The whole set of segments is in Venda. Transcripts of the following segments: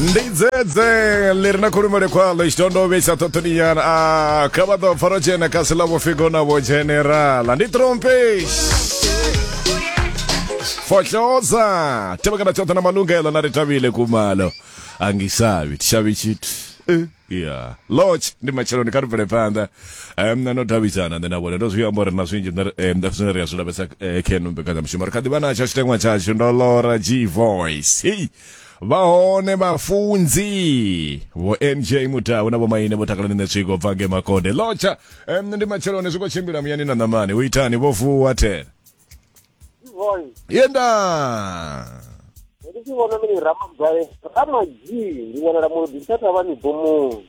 ndi dzedze ḽi re na khulumele khwaḽo tshitondo vhe sa ṱhoṱhoninyana a kha vha ḓo pfaro tshena kha si ḽa vhofhigo na vho generala ndi trompesh fohloza tevhekana tshoṱhe na malungelo na ri tavhile kumalo angisavi tishavi tshithu Eh, ya lodge ndi matsheloni kha ri bvele phanḓa um no davhidzana nṋe na vhone ndo zwi amba uri na zwinzhi nṋe ri- eh, nda zwine ri a zwi lavhesa eh, khe no mbekanyamushumo ri kha ḓi vha natsho tshiteṅwa tshashu ndo lora g voice hei vha hone vhafunzi vho nj mutau na vhomaine vho takalani ne tswiko bva nge makonde lotsha em, ndi matsheloni zwi khou tshimbila muyani na ṋamani u itani vho vuwa thera Boy, yenda ndi tshi vhona mini ramagwale ramadzii ndi wanala mulodi tsha thavhani bomoni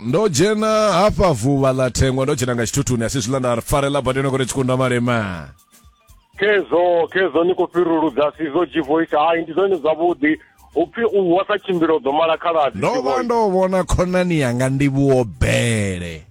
ndo dzhena hafha vuvha ḽa thengwa ndo dzhena nga tshithuthuni asi zwiḽa nda farela badeno kore tshikunda malema kezo kezo ni khou fhiruludza sizo gvoice hai ndi zwone zwavhuḓi upfi u wa sa tshimbila u ḓo mala khaladzi ndo vha ndo vhona khonani yanga ndivhuwo bele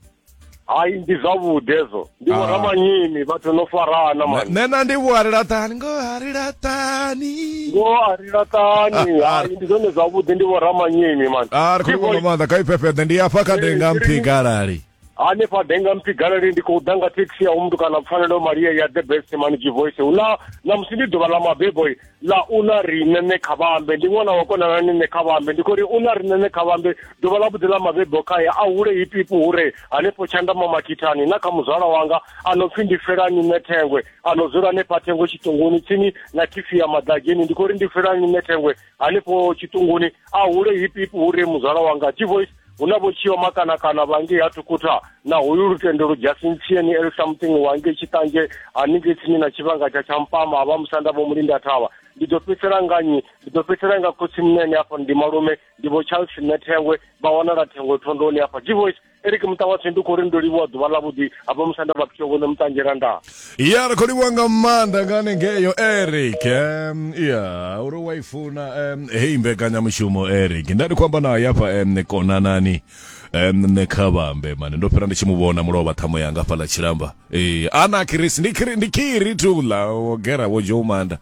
hayi ndi zwavhuḓi hezwo ndi vho ah. ramanyimi vhathu no farana mani nṋe na ndi vho a ri laṱani ngo a ri laṱani ngo a ri laṱani ah, ah. hayi ndi zwone zwavhuḓi ndi vho ramanyimi mani a ri khou nga maanḓa kha ifhefheḓe ndi afha kha denga mphigalali hanefha denga mphigalali ndi khou ḓa nga thekhisi ya umntu kana pfanelo maria ya the best mani jivoice hu na namusi ndi ḓuvha ḽa mabeboi ḽa u ḽa riṋe ṋe kha vhambe ndi ṅwana wa konana ni ṋe kha vhambe ndi khou ri u ḽa riṋe ṋe kha vhambe ḓuvha ḽa vhuḓi ḽa mabebo khae a hule hipipu hure hanefho tshandama makhithani na kha muzwala wanga a no pfi ndi felani ṋe thengwe a no dzula hanefha thengo tshiṱunguni tsini na khifi ya maḓageni ndi khou ri ndi felani ṋe thengwe hanefho tshiṱunguni a hule hipipu hure muzwala wanga t-voice hu na vho tshio makanakana vhangei ha thukutha na hoyu lutendo lujasintsieni el something wangei tshiṱanzhe haningei tsini na tshivhanga tsha tsha mpama ha vha musanda vho mulinda thavha ndi ḓo fhedzisela nga nyi ndi ḓo fhedzisela nga khotsi munene hafha ndi malume ndi vho charles nṋe thengwe vha wanala thengwe thondoni hafha g voice eric muṱa watshe ndi khou ri ndo livhuwa ḓuvha ḽa vhuḓi hafha musanda vha phitsho vhone muṱanzhela ndaa ya ri khou livhuwa nga maanḓa nga hanengeyo eric um, ya uri wa i funa um, heyi mbekanyamushumo eric nda ndi khou amba nayo hafha um, konanani um, nṋe kha vhambe mane ndo fhira ndi tshi mu vhona mulovha ṱhamo yanga fhaḽa tshilamba e, ana kirisi ndi kiri, ndi kiri tula wo gera wo joumanda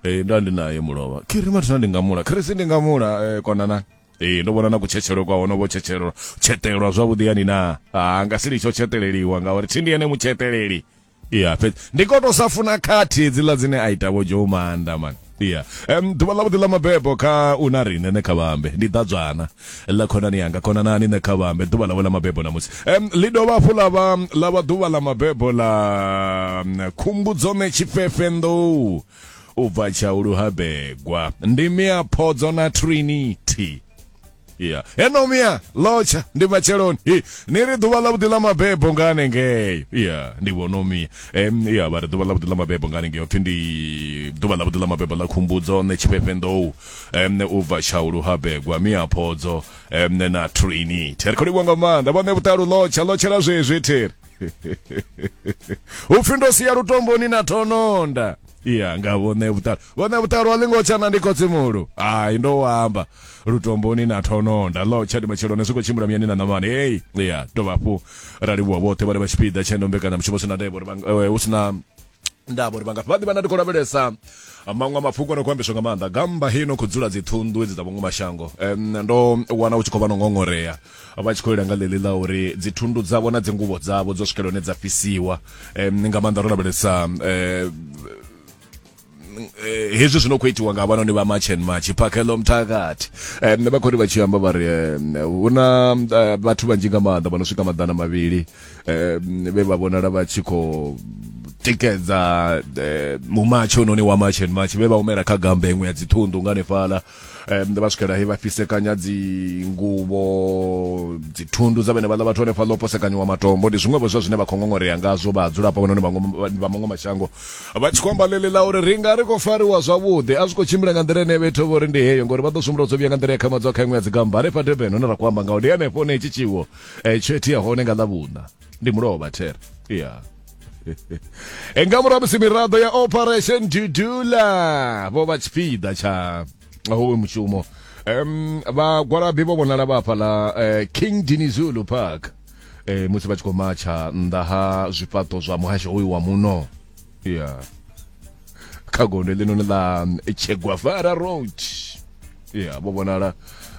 e, nda ndi naye mulovha kiri mathina ndi nga mula kirisi ndi nga mula e, konanani ee ndo vhona na kutshetshelo kwa hono vho tshetshelo tshetelwa zwavhuḓi yani na ha nga si litsho tsheteleliwa ngauri thi ndi ene mutsheteleli ya fhedzi ndi ko to sa funa khathi hedziḽa dzine a ita vho joe maanda mani ya um ḓuvha ḽavhuḓi ḽa mabebo kha u na riṋe ne kha vhambe ndi ḓadzwana ḽa khonani yanga khonanani ne kha vhambe ḓuvha ḽavho ḽa mabebo ṋamusi um ḽi dovha hafhu ḽa vha ḽa vha ḓuvha ḽa mabebo ḽa khumbudzo me tshifhefe nḓou u bva tshaulu ha begwa ndi mia phodzo na trinity ya eno mia lotsha ndi matsheloni Hi, ni ri ḓuvha ḽavhuḓi ḽa mabebo nga hanengeyo ya ndi vhono mia em ya vha ri ḓuvha ḽavhuḓi ḽa mabebo nga hanengeyo pfhi ndi ḓuvha ḽavhuḓi ḽa mabebo ḽa khumbudzo nṋe tshifhefhenḓou em u bva tshaulu ha begwa mia phodzo em na trinity ri khou livhuwa nga maanḓa vhaṋe vhuṱalu lotsha lotshela zwezwi theri upfi ndo sia lutomboni na thononda iya nga vhone vhuṱalo vhone vhuṱalo a ḽi ngo tshana ndi khotsimuhulu ai ndo wamba lutomboni na thononda lo tshadi matsheloni zwi khou tshimbila muyani na ṋamani hei iya dovha hafhu ra livhuwa vhoṱhe vhane vha tshipiḓa tshendombekana mushumo sina ndevho uri hu sina ndavha uri vha nga vha ḓivha na ndi khou lavhelesa maṅwe mafhungo no khou ambiswa nga maanḓa gamba heyi no khou dzula dzi thundu edzi dza vhungu mashango um, ndo wana u tshi khou vha no ngongorea vha tshi khou ila nga ḽeḽi ḽa uri dzi thundu dzavho na dzi nguvho dzavho dzo swikela hone dza fhisiwa um, nga maanḓa ro lavhelesa um, Eh, hezwi zwino khou itiwa nga havhanoni vha march and march phakhelo mthakathi um eh, vha khou ri vha tshi amba vha ri eh, hu na vhathu vhanzhi nga maanḓa vha no swika maḓana mavhili eh, vhe vha vhonala vha tshi khou tikedza eh, mumatshi ononi wa march and march vhe vha humela kha gambe iṅwe ya dziṱhunḓu nga nefhala um vha swikela he vha fhisekanya dzinguvho dzithundu dza vhene vhaḽa vhathu hanefha ḽo posekanyiwa matombo ndi zwiṅwevho zwa zwine vha khou ngongorea ngazwo vha hadzulapo vhanoni vha maṅwe mashango vha tshi khou amba ḽeḽi ḽa uri ri nga ri khou fariwa zwavhuḓi a zwi khou tshimbila nga nḓila ine vhethu vho ri ndi heyo ngori vha ḓo sumula dzo vhuya nga nḓila ya khamadza kha iṅwe ya dzigamba hanefha durban hune ra khou amba ngaho ndi hanefho ne tshi tshiwo eh tsheti ya hone nga ḽa vhuṋa ndi mulovha there yeah e nga murahu musi miraḓo ya operation dudula vho vha tshipiḓa tsha howe mushumo um vhagwalabi vho vhonala vha hafhaḽa eh, king dinizulu park eh, musi vha tshi khou matsha nnḓa ha zwifhaṱo zwa muhasho hoyu wa muno ya kha gondo ḽinoni ḽa mm, chegwavara road ya vho vhonala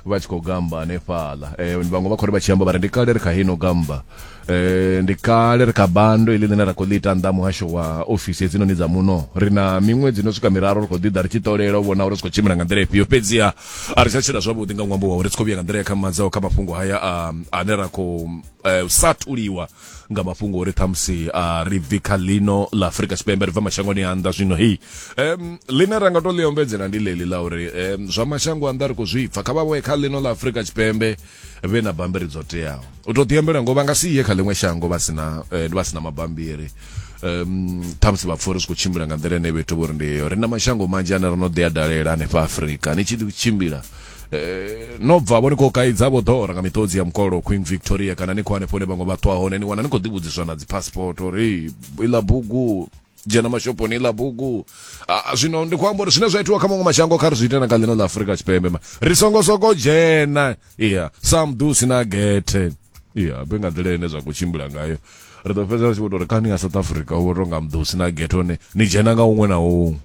vha tshi khou gamba hanefhaḽa eh, vhaṅwe vha khou ri vha tshi amba vha ri ndi kale ri kha hino gamba eh, ndi kale ri kha bando iḽi ḽine ra khou ḽi ita nnḓa muhasho wa ofisi hedzinoni dza muno ri na miṅwedzi no swika miraru ri khou ḓi ḓa ri tshi ṱolela u vhona uri zwi khou tshimbila nga nḓila ifhio fhedziha a ri tsha tshila zwavhuḓi nga ṅwambo wa uri ri tshi khou vhuya nga nḓila ya kha madzaho kha mafhungo haya a- ane ra khou eh, u sa thuliwa nga mafhungo uri ṱhamusi a ri bvi kha ḽino ḽa afurika tshipembe ri bva mashangoni a nnḓa zwino hei um ḽine ra nga to ḽi ombedzela ndi ḽeḽi ḽa uri um zwa mashango a nnḓa ri khou zwi pfa kha vha vhoye kha ḽino ḽa afurika tshipembe vhe na bambiri dzo teaho u to ḓiambela ngo vha nga si ye kha ḽiṅwe shango vha sina eh, vha sina mabambiri um ṱhamusi vha pfori zwi khou tshimbila nga nḓila ine vhethu vho ri ndi heyo ri na mashango manzhi ane ro no ḓi a dalela hanefha afurika ni tshi ḓi tshimbila Eh, no bva vho ni khou kaidza vho ḓora nga miṱodzi ya mukolo queen victoria kana ni khou hanefho hune vhaṅwe vha ṱwa hone ni wana ni khou ḓivhudziswa na dzipassport uri iḽa bugu dzhena mashoponi iḽa bugu Ah, zwino ndi khou amba uri zwine zwa itiwa kha maṅwe mashango kha ri zwi ite na kha ḽino ḽa afurika tshipembe ma ri songo soko dzhena iya sam du sina gethe iya be nga nḓila ine zwa khou tshimbila ngayo ri ḓo fhedza ri tshi vho tou ri kani ya south africa u vho tou nga mḓusi na gethe one ni dzhena nga huṅwe na huṅwe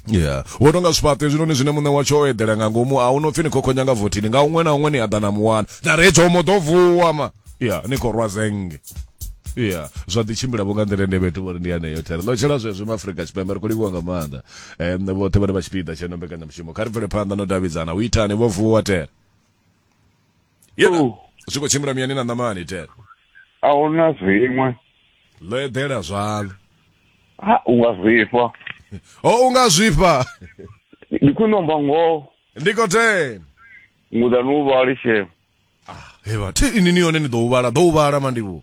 yeah wo tonga zwifhaṱo hezwinoni zwine muṋe watsho o eḓela nga ngomu a hu no pfhi ni khokhonya nga vothini nga huṅwe na huṅwe ni a ḓa na muwana na re tshomo ḓo vuwa ma ya ni khou rwa zenge ya zwa ḓi tshimbila vho nga nḓila ende vhethu vhori ndi yaneyo thera ḽo tshela zwezwo ma afrika tshipembe ri khou livhuwa nga maanḓa um vhoṱhe vhane vha tshipiḓa tsheno mbekanyamushumo kha ri bvele phanḓa no davhidzana u itani vho vuwa tera yena Oh. zwi khou tshimbila miyani na ṋamani ten a hu na zwiṅwe ḽo eḓela zwaḽo ha u nga zwifha o u nga zwifha ndi khwine amba ngoho ndi khou ten ngudani u vhali shema hevha thi ini ni yone ni ḓo u vhala ḓo u vhala mandivhu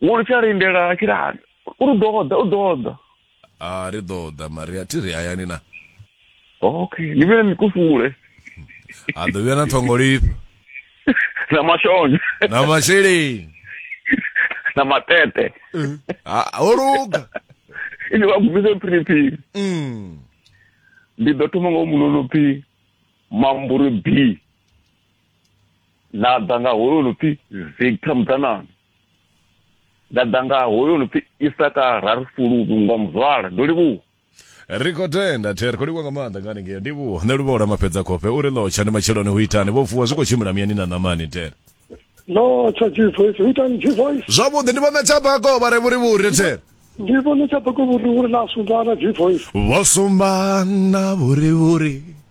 wo lu tsha lindela a tshila hani u ri ḓo ḓa u ḓo ḓa a ri ḓo ḓa maria thi ri hayani na okay ni vhele ni kufule a ḓo vhuya na ṱhongolifha na mashonzha na masheleni na matete ho luga ini vha gubise phiriphiri mm. ndi ḓo thoma ngo munono phi mamburi b nda ḓa nga hoyo no pfi victor muḓanana nda ḓa nga hoyo no pfi isaka rarifululu nga muzwala ndo livhuwa ri khou tenda the ri khou livhuwa nga maanḓa nga haningei ndivhuwa nṋe luvhola mafhedza khofhe uri lotsha ndi matsheloni ho itani vho vuwa zwi khou tshimbila miyani na ṋamani the no tsha jivoice ho itani jivoice zwavhuḓi ndi vhona tshabako vha re vhurivhuri the ndi vhona tshabako vhurivhuri na sumbana jivoice vho sumbana vhurivhuri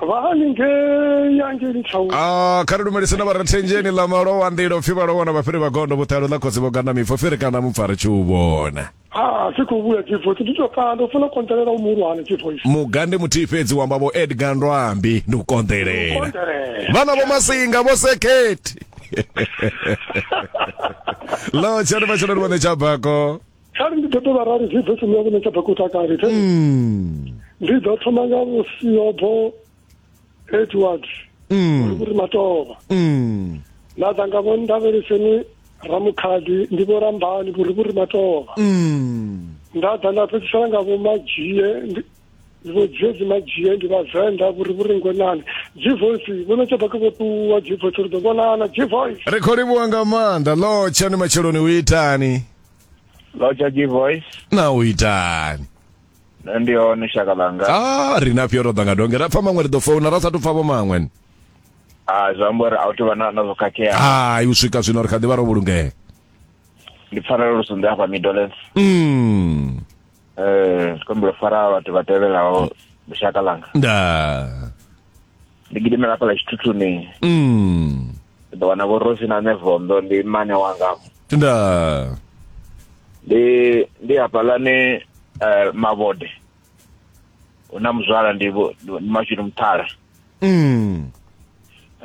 vha haningei angeli town a kha ri lumelise na vharathenjeni ḽa malowa nḓila upfi vhalowa na vhafhiri vha gondo vhuṱalo ḽa khotsi vho gana mipfo fhiri kana mupfa ri tshi u vhona ha si khou vhuya divoice ndi to kanda u funa u konḓelela u muhulwane divoice muga ndi muthihi fhedzi wa amba vho edgar ndwambi ndi u konḓelela konḓelela vhana vho masinga vho sekhethi lo tshani vha tshelani vhone tsha bako kha ri ndi ḓo tou vharali zwi bve tsini yavho netsha bekuta kale the mm. ndi ḓo thoma nga vhusiobho edward mm. uri matovha mm. nda ḓa nga vho ndavheleseni ramukhadi ndi vho rambani vhuri vhuri matovha nda ḓa nda fhedzisela nga vho madzhie vho dzedzi madzhie ndi vhavenḓa vhuri vhuri ngwenani gvoice vho netsha beke vho ṱuwa gvoice ri ḓo vhonana gvoice ri khou livhuwa nga maanḓa lotsha ni matsheloni u itani Loja G voice. Na u itani? Nṋe ndi hone shaka ḽanga. Ah, ri na fyo ro ḓa nga donge. Ra pfa maṅwe ri ḓo founa ra sa tu pfa vho maṅwe. Ah, zwi amba uri a u tou vha na na zwo khakhea. Hai, u swika zwino ri kha ḓi vha ro vhulungea. Ndi pfanelo lu sunḓe hafha Midlands. Mm. eh sikombelo fara batho ba tebelago boshaka langa da ndi gidimela pala tshithuthuni mm ndo wana vho rosi na nevondo ndi mane wanga da ndi ndi hafhalani eh mavode una muzwala ndi vho- ndi mashudu muthala mm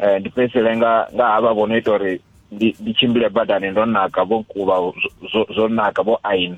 eh ndi fhedzisele nga nga havha vho no ita uri ndi ndi tshimbile badani ndo naka vho kuba zwo- zwo- zwo naka vho aina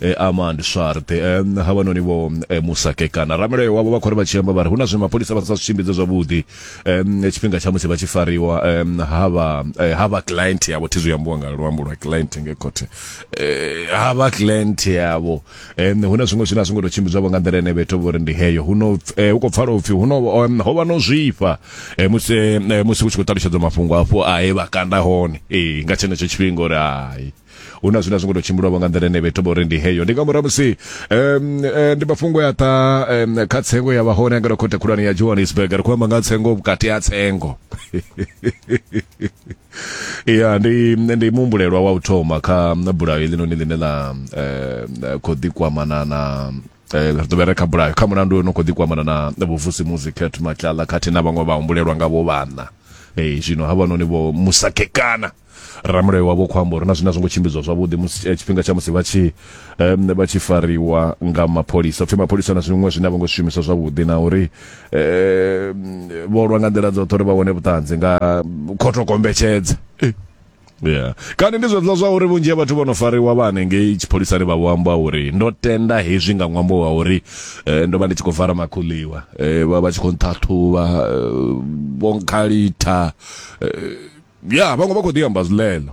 e, amand swart e, havhanoni vho e, musakekana ramulayo wavho vha khou ri vha tshi amba vha ri hu na zwe mapholisa vha sa zwi tshimbidze zwavhuḓi em, tshifhinga tsha musi vha tshi fariwa em, ha vha eh, ha vha client yavho thi zwi ambiwa nga luambo lwa client nge khothe Eh, ha vha client yavho Em, hu na zwiṅwe zwine a zwi ngo tou tshimbidzwavho nga nḓila ene vhetho vho ri ndi heyo hu no eh, hu khou pfala upfhi hu no em, ho vha no zwifha eh, musi eh, musi hu tshi khou ṱalutshedzwa mafhungo afho a he vha kanda hone ee nga tshenetsho tshifhinga uri hai hu na zwine a zwi ngo to tshimbilwavho nga nḓila ine vha ita vha uri ndi heyo ndi nga murahu musi em, eh, ndi mafhungo ya ṱa em, kha tsengo ya vha hone ngeno khothe khulwane ya johannesburg ri khou amba nga tsengo vhukati ha tsengo ya ndi ndi muhumbulelwa wa u thoma kha bulayo heḽinoni ḽine ḽa eh, khou ḓikwamana na eh, ri ḓo vhera kha bulayo kha mulandu no khou ḓikwamana na na vhuvusi musi cat matlala khathihi na vhaṅwe vhahumbulelwa nga vho vhana Eh, zwino havhanoni vho musakekana ramulayo wavho khou amba uri na zwine a zwo ngo tshimbidzwa zwavhuḓi musi eh, tshifhinga tsha musi vha tshi um, vha tshi fariwa nga mapholisa pfhi mapholisa na zwiṅwe zwine a vho ngo shumisa zwavhuḓi na uri um, vho lwa nga nḓila dzoṱhe uri vha wane vhuṱanzi nga khotho kombetshedza eh. yeah kani ndi zwezwo zwa uri vhunzhi ha vhathu vho no fariwa vha hanengei tshipholisani vha vho amba uri ndo tenda hezwi nga ṅwambo wa uri eh, ndo vha ndi tshi khou fara makhuliwa eh, vha vha tshi khou nṱhaṱhuvha eh, vho nkhalitha eh, ya vhaṅwe vha khou ḓi amba zwiḽeḽo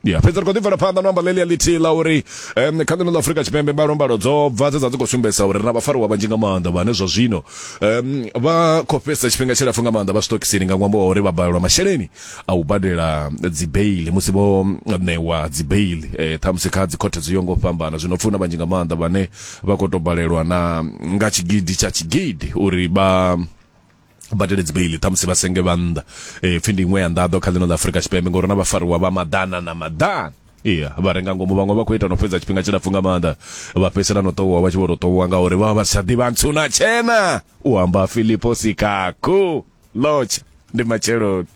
ya fhedzi ri khou ḓi bvela phanḓa no amba ḽeḽia ḽithihi ḽa uri um kha ḽino ḽa afurika tshipembe mbalombalo dzo bva dze dza dzi khou sumbedzisa uri ri na vhafariwa vhanzhi nga maanḓa vhane zwa zwino um vha khou fhedzisa tshifhinga tshilapfu nga maanḓa vha sitokisini nga ṅwambo wa uri vha balelwa masheleni a u badela dzibeili musi vho ṋewa dzibeili um eh, ṱhamusi kha dzikhothe dzo yo ngo fhambana zwino pfuna vhanzhi nga maanḓa vhane vha khou tou balelwa na nga tshigidi tsha tshigidi uri vha badele dzibeili ṱhamusi vha senge vha nnḓa um pfhi ndi iṅwe ya nḓaḓo kha ḽino ḽa afurika tshipembe ngori na vhafariwa vha maḓana na maḓana iya vha renga ngomu vhaṅwe vha khou ita no fhedza tshifhinga tshilapfu nga maanḓa vha fhedzisela no ṱohuwa vha tshi vho to ṱohuwa ngauri vha vha vha si tsha ḓivha ntsuna tshena u amba filipo sikakhu lotsha ndi matsheloni